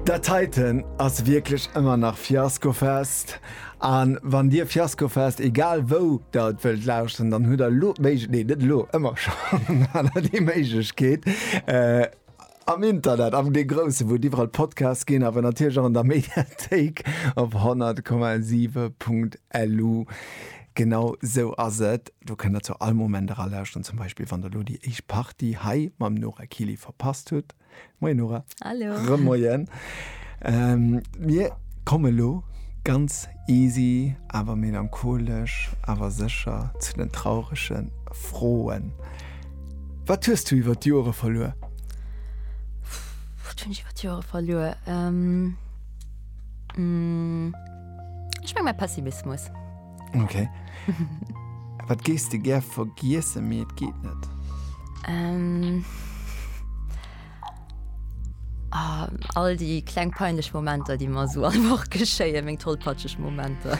Dat heiten ass wierklech ëmmer nach Fiaskofest. An wann dir Fiaskofest egal wou der et wëllt lauschteren, dann hutt der elo d'Méiglech nee net elo, ëmmer schonn hat der déi Méiglechkeet äh am Internet, am dee grousse, wou et iwwerall Podcasts ginn, awer natierlech och an der Mediathéik op 100,7.lu. Genau sou ass et. Do kënnt der zu all Moment era lauschteren, zum Beispill wann der elo déi éischt Partie hei mam Nora Kili verpasst hutt. Moien Nora. Hallo. Remoien. Ähm, mir komme elo ganz easy awer melancholesch awer sécher zu den traurege Froen. Wat hues du iwwer d'Jore verluer? Wat hunn ech iwwer d'Jore verluer? Ähm, mmh. Ech meng mei Pessimismus. Ok. Wat gees de gär vergiessen, mee et geet net? Ähm. Ah, all déi kleng peinlech Momenter, déi mer esou all Woch geschéien, meng tollpatscheg Momenter.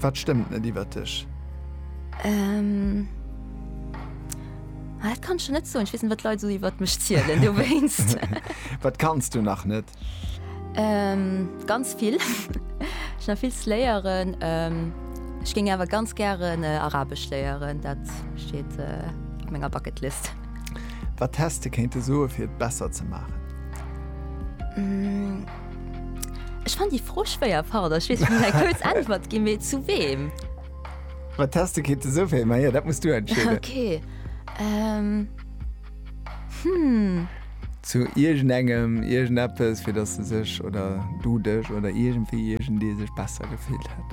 Wat stëmmt net iwwert dech? Ähm. Ah, dat kann ech jo net soen. Ech weess net, wat d'Leit esou iwwert mech zielen dowéinst. Wat kanns du nach net? Ähm, ganz vill. Ech nach vill ze léieren. Ähm, ech géing awer ganz gären Arabesch léieren, dat steet op menger Bucketlist. Wat häss de kéinte soen, fir et besser ze maachen? Ech fannen déi Fro schwéier, pardon. Ech weess, ech muss eng kuerz Äntwert ginn, mee zu weem? Wat häss de kéinte soen, fir. Maja, dat muss du entscheeden. Okay. Ähm. Hm. Zu iergendengem, iergendeppes, fir dass se sech oder du dech oder iergendwéi, iergendee sech besser gefillt hätt.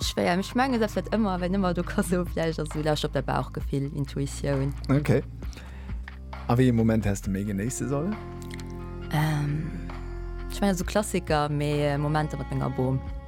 Schwéier, mee ech mengen, dat wäert ëmmer, wéin ëmmer do ka soe vläicht ass esou, lauscht op däi Bauchgefill, Intuitioun. Ok. A wéi ee Moment häss de méi genéisse sollen? Ech mengen esou Klassiker, mee Momenter mat menger Bom.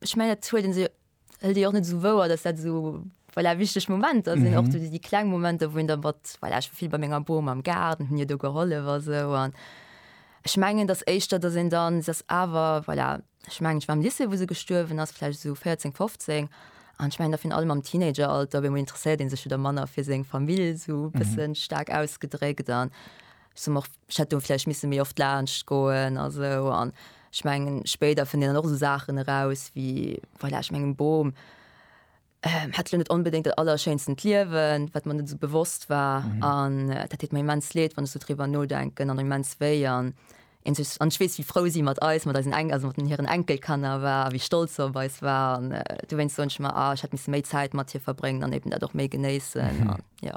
ech mengen dat huet se hëlt Dir och net sou wouer, dass dat sou voilà, wichteg Momenter sinn mm -hmm. och du déi kleng Momenter, wou en der mat voilà, ech vill bei menger Boom am Gaarden hunn Dir do gehollef a sou an ech mengen dass éischter dass en dann dass awer voilà, ech mengen ech war am Lycée, wou se gestuerwen ass vläicht sou 14, 15 an ech mengen da vun allem am Teenageralter, wéi mol interesséiert ee sech wieder manner fir seng Famill sou bëssen mm -hmm. staark ausgedréckt an sou och ech hätt do vläicht misse méi oft laanscht goen a sou. An ech mengen, spéider fënnt een dann och esou Saachen eraus wéi, voilà, ech mengen, e Bom hätt elo net onbedéngt dat allerschéinsten Liewen, wat mer net esou bewosst war. An dat deet mer immens leed, wann ech sou driwwer nodenken, an immens wéi. An een sech, an ech weess, wéi frou si mat eis, mat eisen Enk, also mat hiren Enkelkanner war a wéi stolz se op eis war. An dowéinst soen ech mer, ah, ech hätt misse méi Zäit mat hir verbréngen an eben dat och méi genéissen. An jo.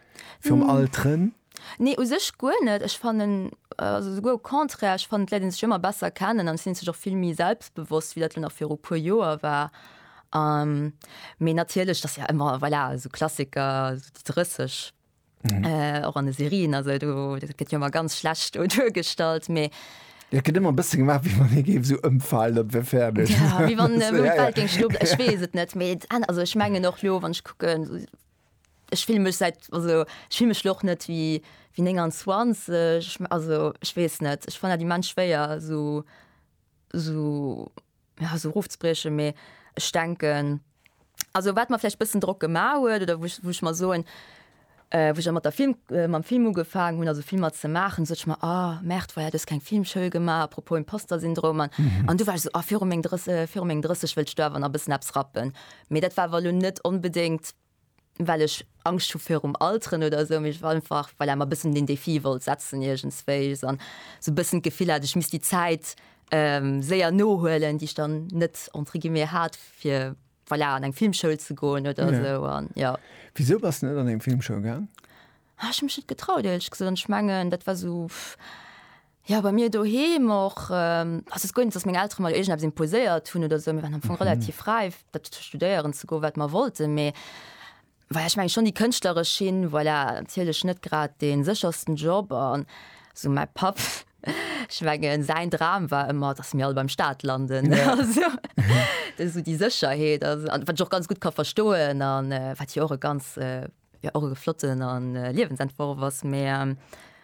Virum Alteren? Nee, u sech guer net. Ech fannen, also souguer au contraire, ech fannen, d'Leit léine sech ëmmer besser kennen an et sinn et sech och vill méi selbstbewosst, wéi dat elo nach viru puer Joer war. Mee natierlech, et ass jo ëmmer, voilà, esou Klassiker, esou déi 30, och an de Serien, also do, dat gëtt jo ëmmer ganz schlecht do duergestallt, mee. Jo, et gëtt ëmmer e bësse gemaach, wéi wann ee géif esou ëmfalen, dat wär fäerdeg. Jo, wéi wann d'Welt géing stoppen. Ech weess et net, mee, also ech mengen och elo, wann ech kucken, Ech fille mech säit, also ech fille mech lo och net wéi 29, also ech weess net, ech fannen dat immens schwéier esou, esou, ja esou erofzebriechen, mee ech denken, also wat mer vläicht bëssen Drock gema huet oder wou ech, wou ech mer soen, wou ech mat der Film, mam Film ugefaangen hunn, also Filmer ze maachen, sot ech mer, ah merde voilà, du hues keng Filmschoul gemaach, à propos Imposter-Syndrom, an du war ech esou, ah viru meng 30, viru meng 30 wëllt ech do awer nach e bëssen eppes rappen. Mee dat war awer elo net onbedéngt, well ech Angscht hu virum Alteren oder esou, mee ech war einfach, voilà, mer e bëssen den Défi wollt setzen iergendswéi an esou e bëssen d'Gefill hat, ech misst déi Zäit séier nohuelen, déi ech dann net, entre guillemets, hat, fir, voilà, an eng Filmschoul ze goen oder esou an, jo. Wisou bass de net an eng Filmschoul gaang? Ech hu mech net getraut, éierlech gesot. An ech mengen, dat war esou, pff. Jo, bei mir doheem och. Also et ass guer net, datt meng Eltere mer iergend eppes imposéiert hunn oder esou. Mir waren am Fong relativ fräi, dat studéieren ze goen, wat mer wollten. Mee voilà, ech mengen schonn déi kënschtleresch Schinn, voilà, natierlech net grad dee séchersten Job. An esou mäi Papp, ech mengen säin Dram war ëmmer, datt mir all beim Staat landen. Also esou déi Sécherheet, wat ech och ganz gutt ka verstoen an wat jo och e ganz, Jo och e flotten a Liewensentworf ass mee.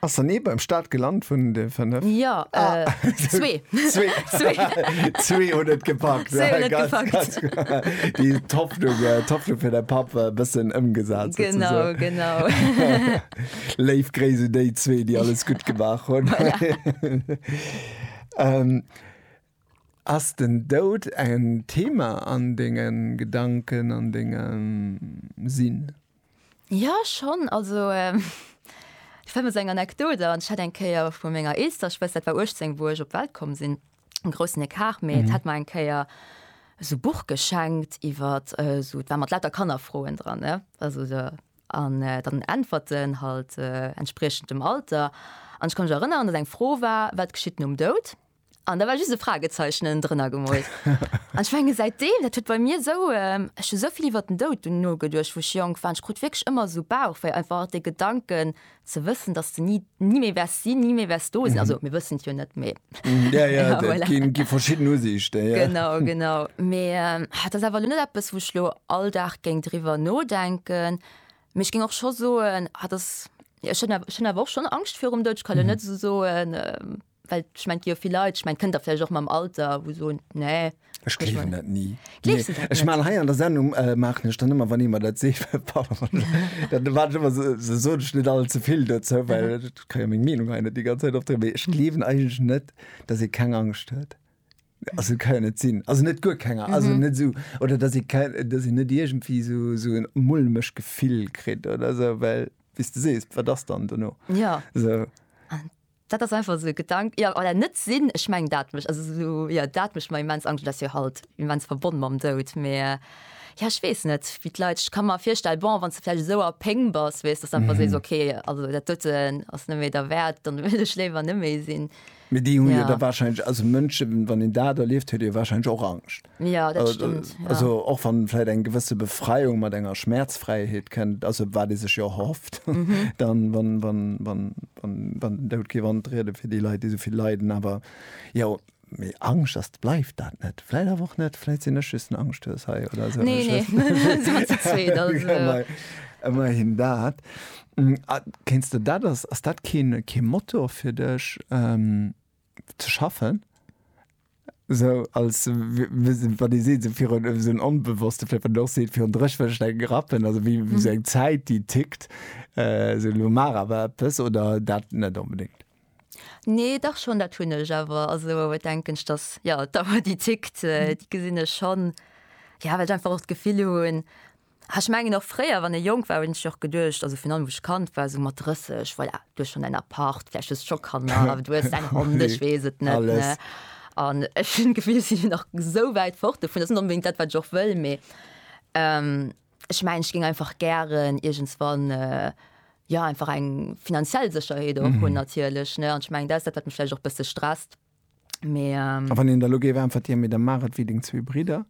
Ass dann ee beim Start gelant vun de 5? Jo, zwee. Zwee hunn et gepackt. Déi d'Hoffnung fir de Papp e bëssen ëmgesat. Genau, genau. Léif Gréiss un déi zwee, déi alles gutt gemaach hunn. Ass den Doud en Thema an denge Gedanken, an dengem Sinn? Jo, schonn. Also, ech fänken mat esou enger Anekdot an. Ech hat eng Kéier vu menger eelster Schwëster, dat war 18, wou ech op d'Welt komm sinn, e groussen Ecart, mee d'hat mer eng Kéier esou e Buch geschenkt iwwer esou, dat war mat lauter Kannerfroen dran, ne, also esou, an dann Äntwerten halt entspriechend dem Alter. An ech ka mech erënneren, datt eng Fro war, Wat geschitt nom Doud? An da war just e Fragezeichnen drënner gemoolt. An ech menge säitdeem, dat huet bei mir esou, ech hu sou vill iwwert den Doud dunn nogeduecht, wou ech jonk war, an ech krut wierklech ëmmer esou Bauchwéi, einfach dee Gedanken ze wëssen, dass de ni, ni méi wäers sinn, ni méi wäers do sinn. Also mir wëssen et jo net, mee, Ja, ja, et voilà, gi, gi verschidden Usiichten, ja. Genau, genau. Mee et ass awer elo net eppes, wou ech elo all Dag géing driwwer nodenken. Mee ech géing och scho soen, et ass, jo, ech hunn, ech hunn awer och schonn Angscht virum Doud. Ech ka elo net esou soen, Well ech mein, jo vill Leit, ech mein, kënnt der vläicht och mam Alter, wou soen, nee. Ech gleewen dat ni. Gleefs du dat net? Ech man hei an der Sendung, äh, maachen ech dann ëmmer, wann ee mer dat seet, pardon, dann erwaart ech ëmmer, se soen ech net alt ze vill dozou, well ech ka jo meng Meenung hei net déi ganz Zäit opdréinen. Mee ech gleewen eigentlech net, dass ee keng Angscht huet. Also et ka jo net sinn. Also net guer keng, also net esou, oder dass ee keng, dass een net iergendwéi esou, esou en mulmeg Gefill kritt oder esou, well wéi s de sees, wat ass dann dono? Jo. Esou. Dat ass einfach esou e Gedank, jo, oder net sinn. Ech mengen, dat mécht, also esou, jo, dat mécht mer immens Angscht. Et ass jo halt immens verbonn mam Doud, mä jo, ech weess net, wéi d'Leit, ech ka mer virstellen, bon, wann s de vläicht esou a Péng bass, weess, datt s de einfach sees, ok, also dat doten ass net méi derwäert, dann wëll ech léiwer net méi sinn. Mä déi hu jo da wahrscheinlech, also Mënschen, wann een dat erlieft, huet ee jo wahrscheinlech och Angscht. Ja, dat stëmmt, ja. Also och wann vläit eng gewësse Befreiung mat enger Schmäerzfräiheet kënnt, also wat ee sech jo och erhofft, dann, wann, wann, wann, wann, wann den Doud géif antrieden fir déi Leit, déi esou vill leiden. Awer jo, mee Angscht, dass et bleift dat net. Vläit awer och net, vläit sinn ech just en Angschthues hei oder esou. Nee, nee, da si mer ze zweet, also. Ëmmerhin dat. Kéinst de dat, ass, ass dat kee, kee Motor fir dech? ze schaffen sou als wat dir seet fir so en onbewosste fir doch seet fir drechwëcht eng grappen also wie wie seg mhm. Zäit die tickt äh, se lo mar awer ëppes oder dat net unbedingt Nee dach schon dat hunne awer also denken dass ja da war die tickt äh, mhm. die gesinne schon ja wat einfach och gefill hunn Ah ech mengen och fréier wann ee jonk war hunn ech och geduecht, also virun allem wou ech Kand war esou mat 30, voilà du hues schonn däin Appart, vläicht hues scho Kanner, awer du hues däin Hond, ech weess et net, ne? Alles. An ech hunn d'Gefill ech sinn nach esou wäit fort dovun, dat ass net onbedéngt dat wat ech och wëll, mee ech mengen ech géing einfach gären iergendswann jo einfach eng finanziell Sécherheet och hunn natierlech, ne? An ech mengen dat ass dat wat mech vläicht och e bësse stresst. Mais, ähm, A wann een der lo géif äntwert ginn, mee da maach et wéi deng zwee Bridder,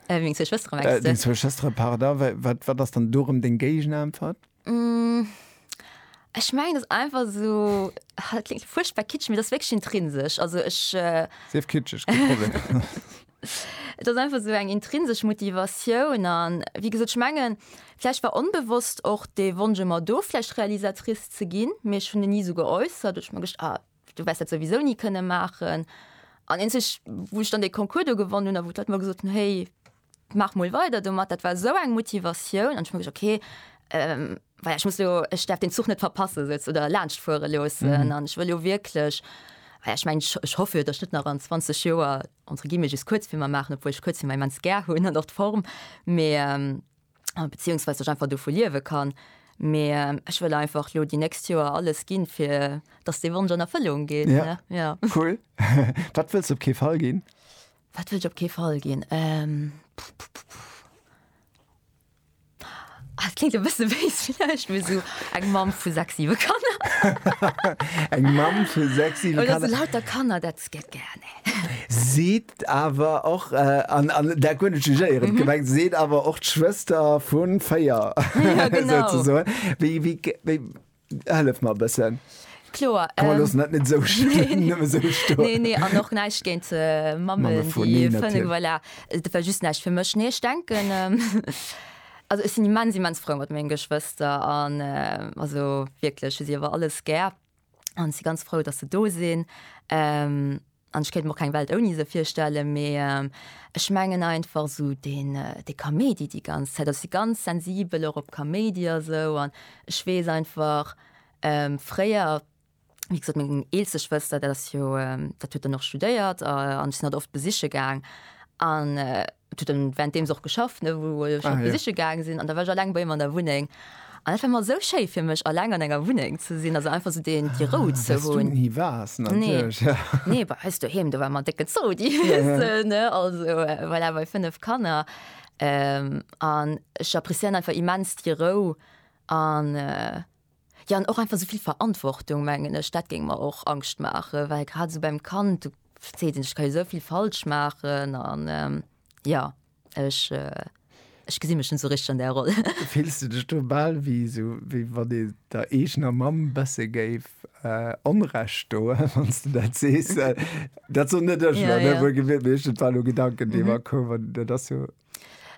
äh, wéi meng zwee Schwëstere, mengst äh, du? deng zwee Schwëstere, pardon, wa- wat, wat ass dann do rëm deng Géigenäntwert? Mm, Ech mengen, dat ass einfach so, ah, dat klingt fuerchtbar kitschig, mee dat ass wierklech intrinsesch. Also ech, äh, Sief kitscheg, kee Problem. Et ass einfach sou eng intrinsesch Motivatioun an, wéi gesot, ech mengen, vläicht war onbewosst och dee Wonsch ëmmer do, vläicht Realisatrice ze ginn, mee ech hunn en ni esou geäussert. Ech hu mer gedacht, ah, Du wärs dat souwisou ni kënne maachen. An eenzeg wou ech dann dee Concours do gewonnen hunn a wou d'Leit mer gesot hunn, héi maach mol weider domat, dat war esou eng Motivatioun an ech hu mer gesot, okay, well ech muss elo, ech däerf deen Zuch net verpasse souz oder laanscht fuere loossen an ech wëll jo wierklech, well ech mengen, ech hoffe jo, datt ech net nach an 20 Joer, entre guillemets, just Kuerzfilmer maachen, obwuel ech Kuerzfilmer immens gär hunn an och d'Form, mee. beziehungsweise ech einfach dovu liewe kann. Mee ähm, ech wëll einfach lo déi nächst Joer alles ginn, fir dass dee Wonsch an Erfëllung geet. Ja. ja. Cool. Wat wëlls op kee Fall ginn? Wat wëll ech op kee Fall ginn? Ähm, Ah, klingt e bësse wéis vielleicht mir so eng Mam vu sechs siwe Kanner. eng Mam vu sechs siwe Kanner. Oder so lauter Kanner dat Et gëtt gären ee. Seet awer och, an dat guer net jugéierend gemengt, seet awer och d'Schwëster vu véier, souzesoen. Wéi, hëllef mer e bëssen. Kloer. Komm mer loossen dat net esou stoen, nëmme esou stoen. Nee, nee, an och näischt géint Mammen, déi fënne, voilà. Dat war just näischt fir mech. Nee, ech denken, also ech sinn immens, immens frou mat menge Geschwëster an also wierklech hu si awer alles gär. an si ganz frou, datt se do sinn. An ech kéint mer och keng Welt ouni se virstelle, mee ech mengen einfach esou deen dee Kaméidi déi ganz Zäit, ech si ganz sensibel och op Kaméidi a sou an ech weess einfach fréier, wéi gesot meng eelste Schwëster, dat ass jo dat huet dann och studéiert an ech sinn hatt oft besiche gaang an. Et huet en währenddeems och geschafft, ne, wou ech Ah, en ja. besiche gaangen sinn. An da war ech alleng bei him an der Wunneng. An dat war emmer esou schéi fir mech, alleng an enger Wunneng ze sinn, also einfach esou deen, déi Rou ze Wes du hunn. ni waars, Nee. natierlech, ja. Nee, bei eis doheem, do war emmer en décken Zoo, déi Wiese, ne, also voilà, bei 5 Kanner. An ech appréciéieren einfach immens déi Rou an. Jo, an och einfach esou vill Verantwortung, mengen ech, dat géing mer och Angscht maachen, well grad esou beim Kand, du verzees net, ech ka jo esou vill falsch maachen an jo, ech, ech gesi mech net esou richteg an där Roll. Fills du dech do bal wéi esou, wéi wann een der eegener Mamm e bësse géif Onrecht doen, wann s de dat sees? Dat soen net ech elo, ne, wuelgewiert, mee ech, et war elo e Gedanken, dee mer koum an dat ass jo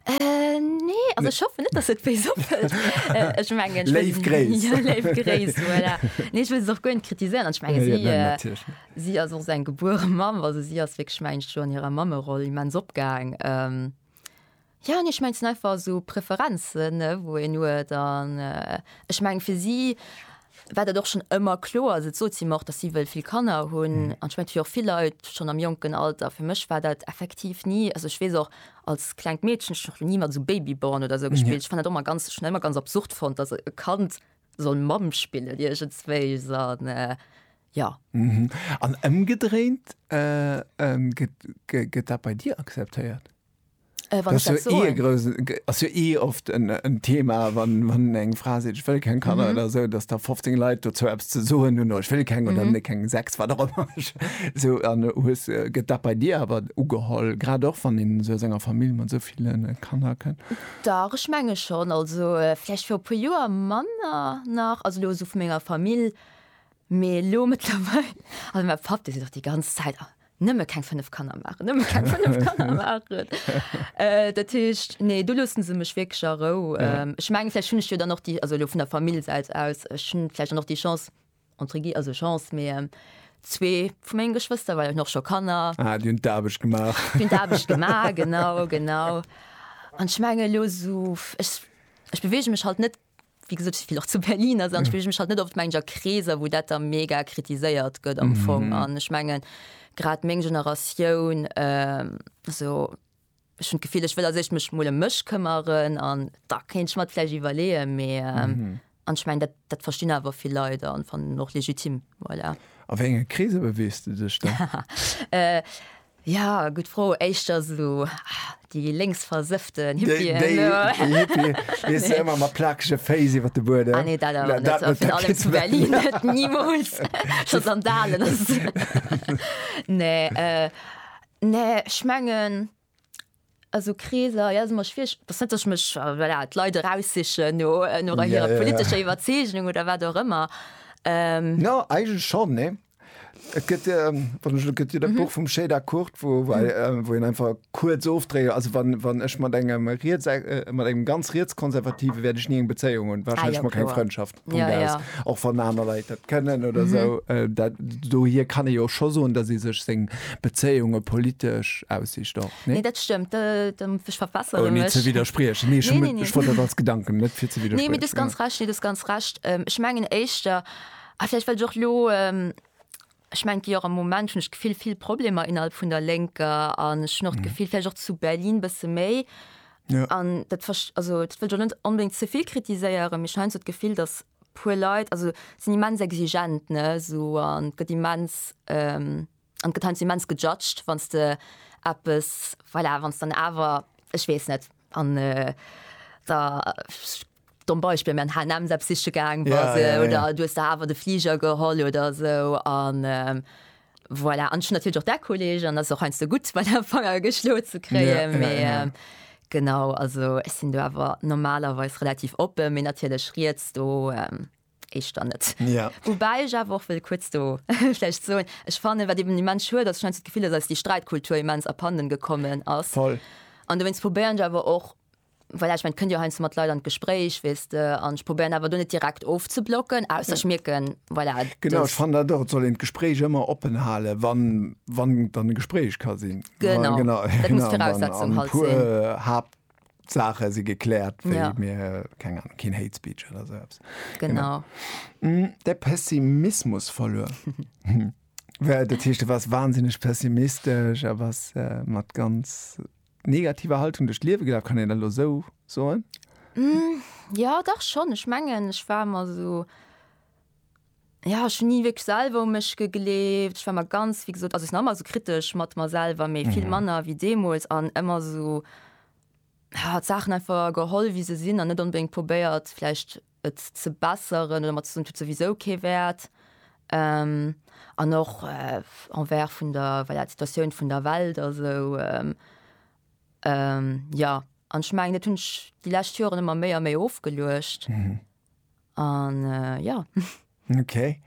Äh, nee, also ich hoffe net, dass et wéi soppelt. äh, ich mein, ich Léif Gréis. Ja, Léif Gréis, voilà. Nee, ich will es auch gönnt kritisieren. Ich meine, ja, sie, ja, äh, sie as och sein gebuere Mam, also sie as wirklich mein schon an ihrer Mammeroll immens opgang. Ähm, ja, nee, ich mein, sind einfach so Präferenzen, ne, wo en nur dann, äh, ich mein, für sie, war dat och schonn ëmmer kloer. Also et sot si mer och, datt si wëll vill Kanner hunn. An ech mengen, et hu jo och vill Leit schonn am jonken Alter. Fir mech war dat effektiv ni, also ech weess och als klengt Meedchen, ech hunn och ni mat esou Babyborn oder esou gespillt. Ech fand dat och ëmmer ganz, schon ëmmer ganz absurd fonnt, datt e Kand soll Mamm spillen iergendswéis an jo. An ëmgedréint, gëtt dat bei dir akzeptéiert? Wann ech dat soen. Ass jo eh oft en Thema, wann eng Fra seet, ech wëll keng Kanner oder esou, datt da 15 Leit dozou eppes ze soen hunn, ech wëll keng oder ne keng, sechs, wat och ëmmer. Esou, an hues, gëtt dat bei dir awer ugeholl, grad och wann een esou aus enger Famill mat esou ville Kanner kënnt? Dach, ech menge schonn. Also vläicht viru e puer Joer manner nach, also elo esou vu menger Famill, mee elo mëttlerweil, also mäi Papp, dee seet och déi ganz Zäit, nëmme keng 5 Kanner machen nëmme keng 5 Kanner machen äh, dat heescht nee du lussen se mech wirklich a Rou ja. ähm, ich mengen vielleicht hun ich jo dann noch die also vun der Familiesäit aus hun vielleicht noch die Chance entre gi also Chance mé ähm, zwee vu mengegen Geschwister weil noch schon Kanner ah, die hun d'Aarbecht gemacht hun d'Aarbecht gemacht genau genau an schmenge lo so ich, ich bewege mech halt net Wéi gesot, ech spillen och zu Berlin, also dann spillen ech mech halt net oft mengen a Kreeser, wou dat da mega kritiséiert gëtt am Fong. An ech mengen, grad meng Generatioun, also ech hunn d'Gefill, ech wëll a sech mech mol ëm mech këmmeren an da kéint ech mer et vläicht iwwerleeën, mee an ech mengen, dat dat verstinn awer vill Leit an fannen och legitim, voilà. A wéi enge Kreeser beweegst du dech da? Ja, gutt Fro. Éischter esou déi lénksversëfften Hippien. Déi, déi, déi Hippien, weess du, ëmmer mat plakege Féiss iwwer de Buedem. Ah nee, dat awer net. Dat, dat, dat zu Berlin net, nimools. Scho Sandalen ass. Nee, äh, nee, ech mengen. A sou Kreeser, jo, ass ëmmer schwiereg. Et ass net, datt ech mech, voilà, d'Leit eraussichen no, no Ja, hirer ja, ja. politescher Iwwerzeegnung oder wat och ëmmer. Jo, eigentlech schonn, nee. Et gëtt, wann ech elo, gëtt jo dat Buch vum Chédar Kurt, wou, wou ei, wou een einfach kuerz ofdréit, also wann, wann ech mat engem riets, mat engem ganz rietskonservative wäert ech ni eng Bezéiung hunn, Ah, jo, wahrscheinlech mol keng kloer. Frëndschaft. Punkt ja, ja. och wann aner Leiit dat kënnen oder mhm. so äh, dat, do hier kann e jo scho soen, dat se sech seng Bezéiunge politesch aussicht doch ne nee, dat stemmtch äh, verfasser oh, nee, ze widerspriechen nee, nee, nee, nee. dat als Gedanken net fir ze wieder nee, ganz recht nee, ganz recht ähm, ich mengen éischter ah, vielleicht lo ähm, Ech mengen jo och am Moment hunn ech d'Gefill vill Problemer innerhalb vun der Lénker an ech hunn och d'Gefill vläicht och zu Berlin bësse méi an dat verst-, also dat wëll ech och net onbedéngt ze vill kritiséieren, mee ech hunn heiansdo d'Gefill, datt puer Leit, also sinn immens exigent ne esou an et gëtt immens an et gëtt heiansdo immens gejudged wann s de eppes, voilà, wann s dann awer, ech weess net an da Domm Beispill, mä an H&M s'eppes siche gaang bass, Ja, ja, ja. oder du hues der awer de Fliger geholl oder esou an voilà. An ech hunn natierlech och där Kolleg, an dat ass och heiansdo gutt, bei der Fanger geschloe ze kréien, Ja, ja, mee ja. genau, also ech sinn do awer normalerweis relativ oppen, mee natierlech riets do éischter net. Ja. Woubäi ech awer och wëll kuerz do vläicht soen, ech fannen, wat eben immens schued ass, ech hunn heiansdo d'Gefill, dass eis déi Sträitkultur immens abhanden gekommen ass. Voll. An dowéinst probéieren ech awer och, Voilà, ech mengen, et kënnt jo heiansdo mat Leit an d'Gespréich, weess de, an ech probéieren awer do net direkt ofzeblocken, ausser ech mierken, voilà, dass. Genau, ech fannen dat och, et soll een d'Gespréich ëmmer oppen halen, wann, wann dann e Gespréich ka sinn. Genau, dat muss d'Viraussetzung halt sinn. An e puer Haaptsaache si gekläert, wéi mir, keng Ahnung, keen Hate Speech oder esou eppes. Genau. De Pessimismus verluer. Dat heescht, du waars wahnsinneg pessimistesch a bass mat ganz. negativer Haltung duerch d'Liewe gelaf, kann een dat elo esou soen? Jo, dach schonn. Ech mengen, ech war ëmmer esou, jo, ech hunn ni wierklech selwer u mech gegleeft. Ech war ëmmer ganz, wéi gesot, also ech sinn nach ëmmer esou kritesch mat mer selwer, mee vill manner wéi deemools an ëmmer esou, jo, d'Saachen einfach geholl, wéi se sinn an net onbedéngt probéiert vläicht, et ze besseren oder mat ze soen, et huet souwisou kee Wäert. An och envers vun der, voilà, d'Situatioun vun der Welt a sou. Jo, an ech mengen, dat hunn ech déi lescht Joren ëmmer méi a méi ofgeluecht an jo. Okay,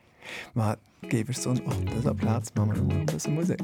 ma géif ech soen, op dëser Plaz maache mer elo mol e bësse Musek.